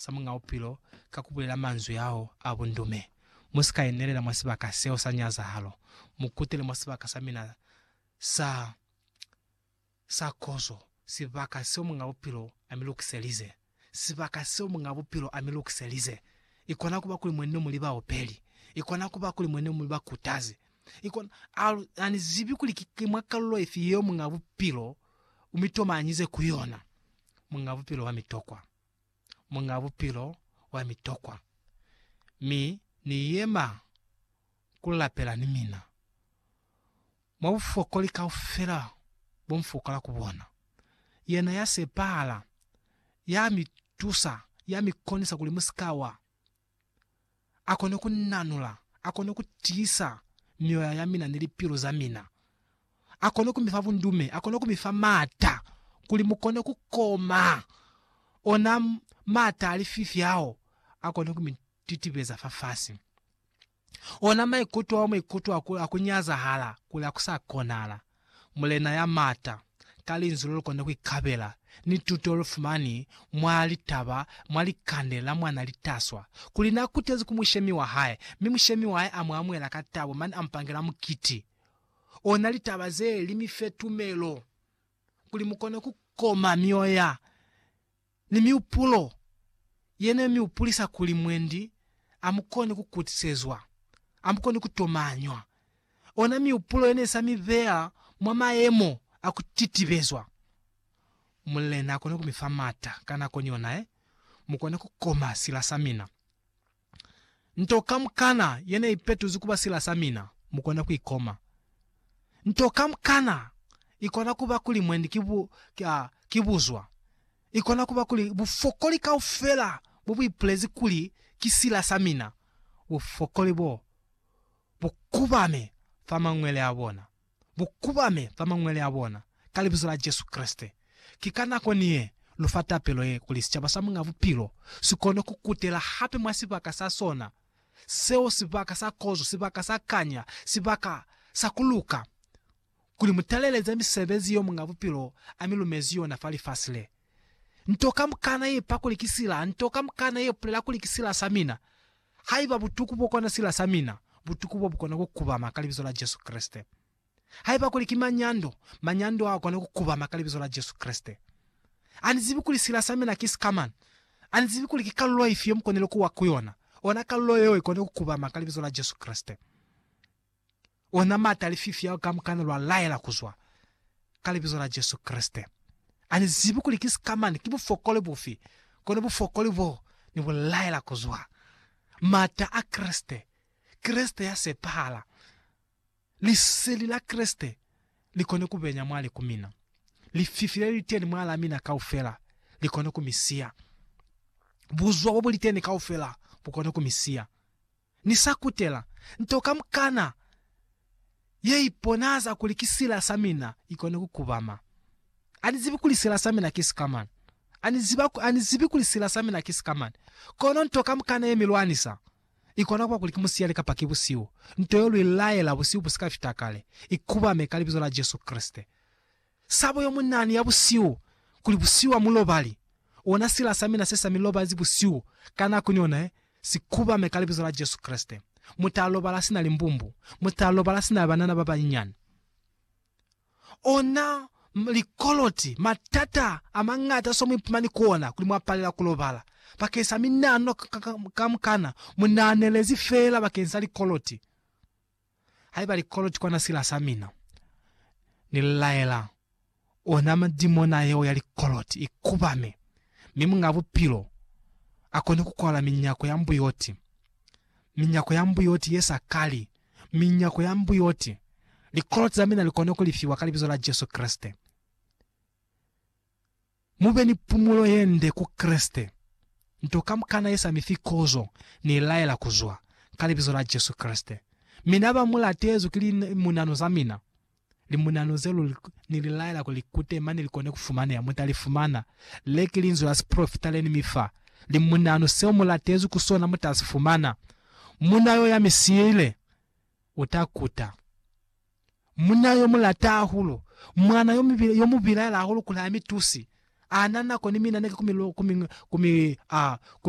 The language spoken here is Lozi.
sa Muñ'a Bupilo ka ku bulela manzwi ao a bundume, Mu si ka inelela mwa sibaka seo sa nyazahalo, mu kutele mwa sibaka sa mina sa, sa kozo, sibaka seo Muñ'a Bupilo a mi lukiselize. Sibaka seo Muñ'a Bupilo a mi lukiselize! I kona ku ba kuli mwa ne mu li baopeli. I kona ku ba kuli mwa ne mu li bakutazi. I kona, ha, ha ni zibi kuli ki, ki mwa kalulo ifi yeo Muñ'a Bupilo u mi tomanyize ku yona. Muñ'a Bupilo wa mi tokwa. Muñ'a Bupilo wa mi tokwa, mi Ni yema ku lapela ni mina. Mwa bufokoli kaufela bo m'fokola ku bona, Yena ya sepahala, ya mi tusa, ya mi konisa kuli mu si ka wa. a kone ku nanula, a kone ku tiisa mioya ya mina ni lipilu za mina, a kone ku mi fa bundume, a kone ku mi fa maata kuli mu kone ku koma ona maata a lififi ao a kone ku mi titibeza fafasi. Ona maikuto ao maikuto a ku, a ku nyazahala kuli a ku sa konahala. Mulena ya Mata, ka Linzwi lo lu kona ku ikabela, ni tuto lu fumani mwa litaba, mwa likande la mwana litaswa, kuli na kutezi ku mushemi wa hae, mi mushemi wa hae a mu amuhela ka tabo, mane a mu pangela mukiti. Ona litaba zee li mi fe tumelo, kuli mu kona ku koma mioya. ni mihupulo ye ne mi hupulisa kuli mwendi a mu koni ku kutisezwa, a mu koni ku tomanywa, ona mihupulo ye ne sa mi beya mwa mayemo a ku titibezwa. Mulena a kone ku mi fa mata ka nako ni yona ye mu kone ku koma sila sa mina. Nto kamukana ye ne i petuzi ku ba sila sa mina, mu kona ku i koma. Nto kamukana i kona ku ba kuli mwendi ki bu, a, ki buzwa. I kona ku ba kuli bufokoli kaufela bo bu ipulezi kuli ki sila sa mina, bufokoli bo bu kubame fa mañwele a bona. bu kubame fa mañwele a bona, ka Libizo la Jesu Kreste. Ki ka nako ni ye, lu fa tapelo ye, kuli sicaba sa Muñ'a Bupilo si kone ku kutela hape mwa sibaka sa sona seo, sibaka sa kozo, sibaka sa kanya, sibaka sa ku luka, kuli mu taleleze misebezi yeo Muñ'a Bupilo a mi lumezi yona fa lifasi le. Nto kamukana ye pa kuli ki sila, nto kamukana ye pulela kuli ki sila sa mina. Haiba butuku bo kona sila sa mina, butuku bo bu kona ku kubama ka Libizo la Jesu Kreste. Haiba kuli ki manyando, manyando ao a kona ku kubama ka Libizo la Jesu Kreste. A ni zibi kuli sila sa mina ki sikamana. A ni zibi kuli ki kalulo ifi yo mu konile ku wa ku yona. Ona kalulo yeo i kona ku kubama ka Libizo la Jesu Kreste. ona mata lififi ao kamukana lwa laela kuzwa, ka Libizo la Jesu Kreste. Ani zibi kuli ki sikamani, ki bufokoli bufi, kono bufokoli bo Ni bu laela kuzwa. Mata a Kreste, Kreste ya sepahala, Liseli la Kreste li kone ku benya mwali ku mina. Lififi le liteni mwalaa mina kaufela li kone ku mi siya. Buzwa bo bu liteni kaufela bu kone ku mi siya. Ni sa kutela nto kamukana ye iponahaza kuli ki sila sa mina i kone ku kubama. A ni zibi kuli sila sa mina ki sikamani. A ni ziba, a ni zibi kuli sila sa mina ki sikamani. Kono nto kamukana ye mi lwanisa, i kona kuba kuli ki musiyali kapa ki busihu, nto yo lu i laela busihu bu si ka fita kale, i kubame ka Libizo la Jesu Kreste. Sabo yo mu nani ya busihu, kuli busihu ha mu lobali, ona sila sa mina se sa mi lobanzi busihu ka nako ni ona ye, si kubame ka Libizo la Jesu Kreste. Mu ta lobala sina limbumbu, mu ta lobala sina banana ba banyinyani. Ona likoloti, matata a mañata so mu ipumani ku ona, kuli mwa palela ku lobala bakeng sa minano kamukana, mu nahanelezi feela bakeng sa likoloti. Haiba likolo ki kona sila sa mina, Ni laela ona madimona yeo ya likoloti i kubame, mi Muñ'a Bupilo a kone ku kwala minyako ya mbuyoti, minyako ya mbuyoti ye sa kali, minyako ya mbuyoti, likoloti za mina li kone ku lifiwa ka Libizo la Jesu Kreste. Mube ni pumulo yende ku Kreste. Nto kamukana ye sami fi kozo, Ni laela kuzwa, ka Libizo la Jesu Kreste. Mina ba mulatezwi ki li munanu za mina. Li munanu ze luli Ni li laela kuli likute mane likone ku fumaneha, muta li fumana. Le ki linzwi la sipolofita le Ni mi fa. Li munanu seo mu latezwi ku sona muta si fumana. Muna yo ya mi siile, uta kuta. Munna yo mu lata hahulu, mwana yo mi, yo mu bilaela hahulu kuli ha mi tusi. A na nako ni mina ne ki ku mi, ku mi, ku mi, a, ku mi